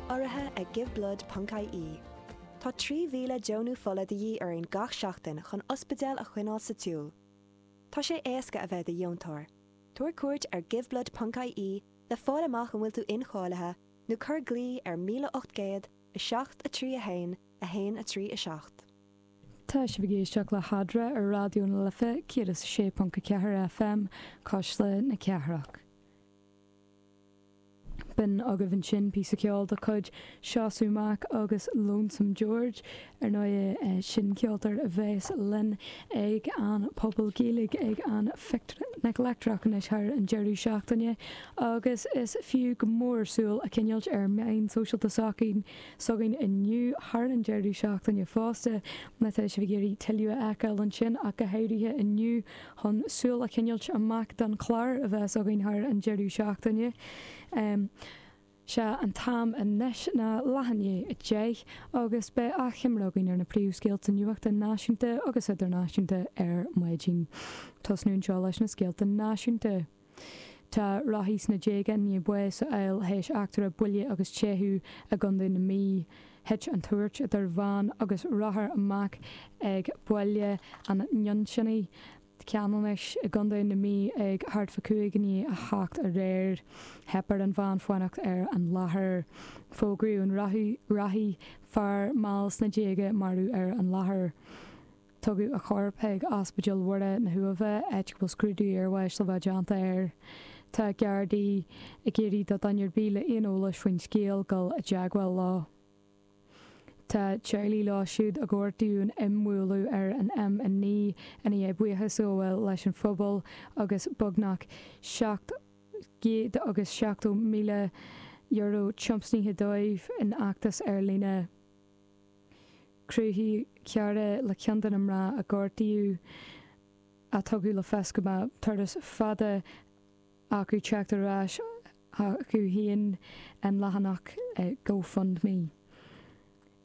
Urraithe ag Giveblood Ponc IE, Tá 3,000 deonú fola de dhíth orainn gach seachtain chun ospidéal a choinneáil sa tsiúl. Tá sé éasca a bheith i do dheontóir. Tabhair cuairt ar Giveblood Ponc IE le fáil amach an bhfuil tú incháilithe nó cuir glao ar 1800 7 3 1 1 3 7. Tá sibh ag éisteacht le hEadra ar Raidió na Life 106.4 FM, Cuisle na Cathrach. B'in agaibh ansin píosa ceoil de chuid Seosamh Mac agus Lonesome George. Ar ndóighe, sin ceoltóir a bheas linn ag an bPuball Gaeilge ag an Phicnic Leictreach anois thar an deireadh seachtaine, agus is fiú go mór súil a choinneáilt ar mheáin shóisialta s'againn inniu thar an deireadh seachtaine fosta, má tá sibh ag iarraidh tuilleadh a fheiceáil ansin ach go háirithe inniu. chun súil a choinneáilt amach don chlár a bheas againn thar an deireadh seachtaine. Sea, an t-am anois ná leath i ndiaidh 10:00, agus beidh achoimre againn ar na príomhscéalta nuachta náisiúnta agus idirnáisiúnta ar maidin. Tosnú anseo leis na scéalta náisiúnta. Tá rothaí sna déaga i ndiaidh bás a fháil théis eachtra buille agus teitheadh i gCondae na Mí. Thit an tuairt idir veain agus rothar amach ag Baile an Nuinseannaigh, Ceanannais, i gCondae na Mí ag thart fá cúig i ndiaidh a hocht aréir. Theip ar an veain fanacht ar an láthair. Fógraíodh an rothaí, fear mall sna déaga marbh ar an láthair. Tugadh a chorp ag Ospidéal Mhuire na hUaimhe, áit a bhfuil scrúdú iarbháis le bheith déanta air. Tá Gardaí ag iarraidh do dhuine ar bith le aon eolas faoin scéal dul i dteagmháil leo. Tá teaghlaigh leo siúd a gortaíodh in imbhualadh ar an M9 i ndiaidh buíochas a ghabháil leis an phobal agus beagnach €770,000 tiomsaithe dóibh in fheachtas ar líne. Chruthaigh cara le ceann de na mná a gortaíodh a tugadh le fios go mbeadh turas fada acu teacht ar ais chucu féin an leathanach Go Fund Me.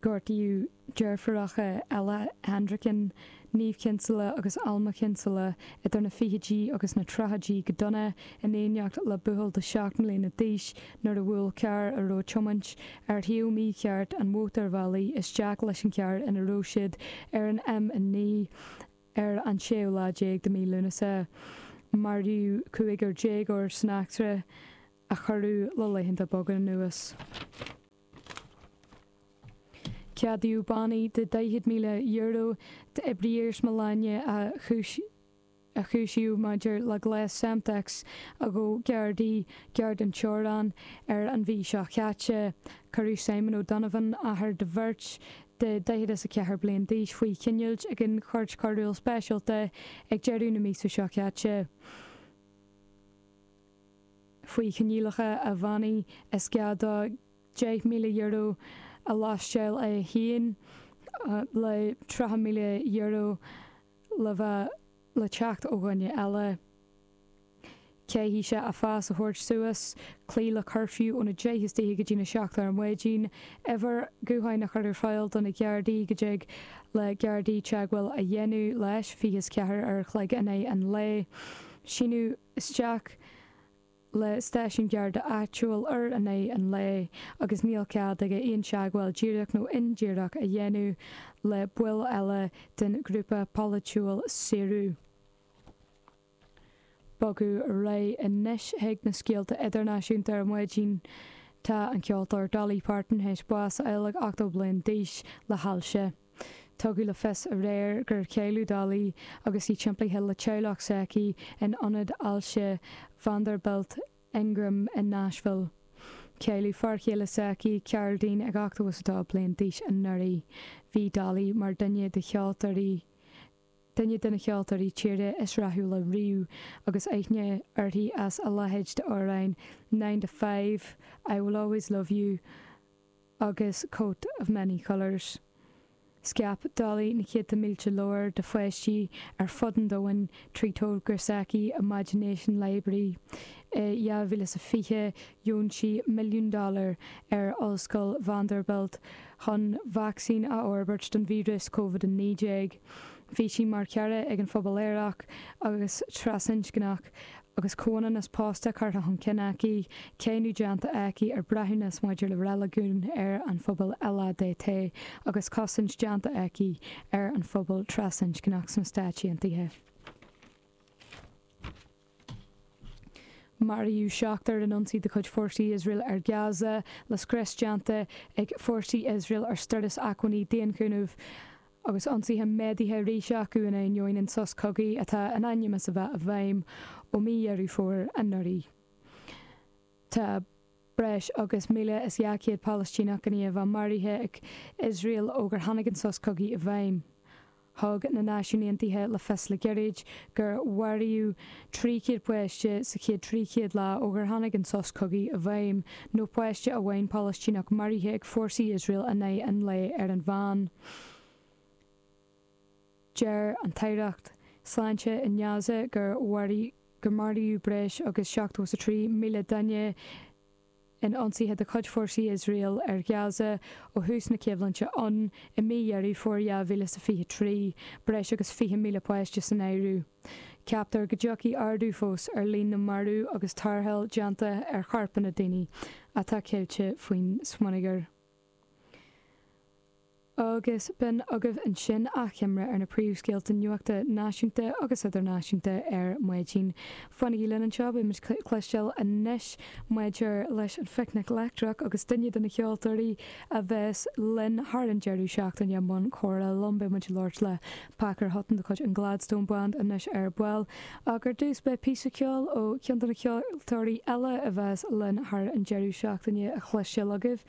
Gortaíodh deirfiúracha Ella Hendricken Niamh Kinsella agus Alma Kinsella idir na fichidí agus na tríochaidí go dona in éineacht le buachaill de sheacht mbliana d'aois nuair a bhuail carr a raibh tiomáint ar thaobh mícheart an mhótarbhealaigh isteach leis an gcarr ina raibh siad ar an M9 ar an séú lá déag de mhí Lúnasa. Maraíodh cúigear déagóir san eachtra a cuireadh le laethanta beaga anuas. Ceadaíodh bannaí de €40,000 d'oibrí iarsmalainne a chúisíodh maidir le gléas Semtex a ghabh Gardaí gar don teorainn ar an mí seo caite. Cuireadh Simon O'Donovan, athair do bheirt de dhaichead is a ceathair bliain d'aois, faoi choinneáil ag an Chúirt Choiriúil Speisialta ag deireadh na míosa seo caite. faoi choinníollacha a bhannaí, is gá dó €10,000 a lóisteáil é féin le €30,000 le bheith le teacht ó dhuine eile. Caithfidh sé a phas a thabhairt suas, cloí le cuirfiú óna deich istoíche go dtí na seacht ar an maidin, uimhir ghutháin a chur ar fáil do na Gardaí go dtig le Gardaí teagmháil a dhéanamh leis, fiche is ceathair a chloig in aghaidh an lae, síniú. isteach le stáisiún Garda áitiúil in aghaidh an lae agus níl cead aige aon teagmháil díreach nó indíreach a dhéanamh le baill eile den ghrúpa polaitiúil Saoradh. Bogadh muid ar aghaidh anois chuig na scéalta idirnáisiúnta ar maidin. Tá an ceoltóir Dolly Parton tar éis bás a fháil ag 80 bliain d'aois le hailse. Tugadh le fios aréir gur cailleadh Dolly agus í timpeallaithe le teaghlach s'aici in ionad ailse Vanderbilt Ingram in Nashville. Cailleadh fear céile s'aici, Carl Dean, ag 82 bliain d'aois anuraidh. Bhí Dolly mar dhuine de cheoltóirí duine de na ceoltóirí tíre is rathúla riamh agus aithne uirthi as a leithéid d'amhráin Nine to Five, I Will Always Love You, agus Coat of Many Colours. Scaip Dolly na céadta mílte leabhar do pháistí ar fud an domhain trí togra s'aici Imagination Library. I 2020, dheon sí milliún dollar ar Ollscoil Vanderbilt chun vacsaín a fhorbairt don víreas Covid-19. Bhí sí mar chara ag an phobal aerach agus trasinscneach, agus comhionannas pósta curtha chun cinn aici, cáineadh déanta aici ar breithiúnas maidir le reiligiún ar an phobal LADT, agus cosaint déanta aici ar an phobal trasinscneach sna Stáit Aontaithe. Maraíodh seachtar in ionsaí de chuid fórsaí Iosrael ar Gaza, le scrios déanta ag fórsaí Iosrael ar stóras acmhainní daonchúnaimh, agus ionsaithe méadaithe arís acu in ainneoin an sos cogaidh atá in ainm is a bheith i bhfeidhm ó mí Dheireadh Fómhair anuraidh. Tá breis agus 1,200 Palaistíneach in Gaza maraithe ag Iosrael ó gur tháinig an sos cogaidh i bhfeidhm. Thug na Náisiúin Aontaithe le fios le gairid gur maraíodh 300 páiste sa chéad 300 lá ó gur tháinig an sos cogaidh i bhfeidhm, nó páiste amháin Palaistíneach maraithe ag fórsaí Iosrael in aghaidh an lae ar an mheán. Deir an tAireacht Sláinte in Gaza gur maraíodh breis agus 73,000 duine in ionsaithe de chuid fórsaí Iosrael ar Ghaza ó thús na coimhlinte ann i mí Dheireadh Fómhair 2023, breis agus 20,000 páiste san áireamh. Ceaptar go dtiocfaidh ardú fós ar líon na marbh agus tarrtháil déanta ar chorpanna daoine atá caillte faoin smionagar. agus b'in agaibh ansin achoimre ar na príomhscéalta nuachta náisiúnta agus idirnáisiúnta ar maidin. Fanaigí linn anseo, beimid ag cloisteáil anois maidir leis an Phicnic Leictreach agus duine de na ceoltóirí a bheas linn thar an deireadh seachtaine i mbun comhrá liom. Beidh muid ag labhairt le Pacair Hutton de chuid an Gladstone Band anois ar ball, ach ar dtús beidh píosa ceoil ó cheann de na ceoltóirí eile a bheas linn thar an deireadh seachtaine a chloisteáil agaibh.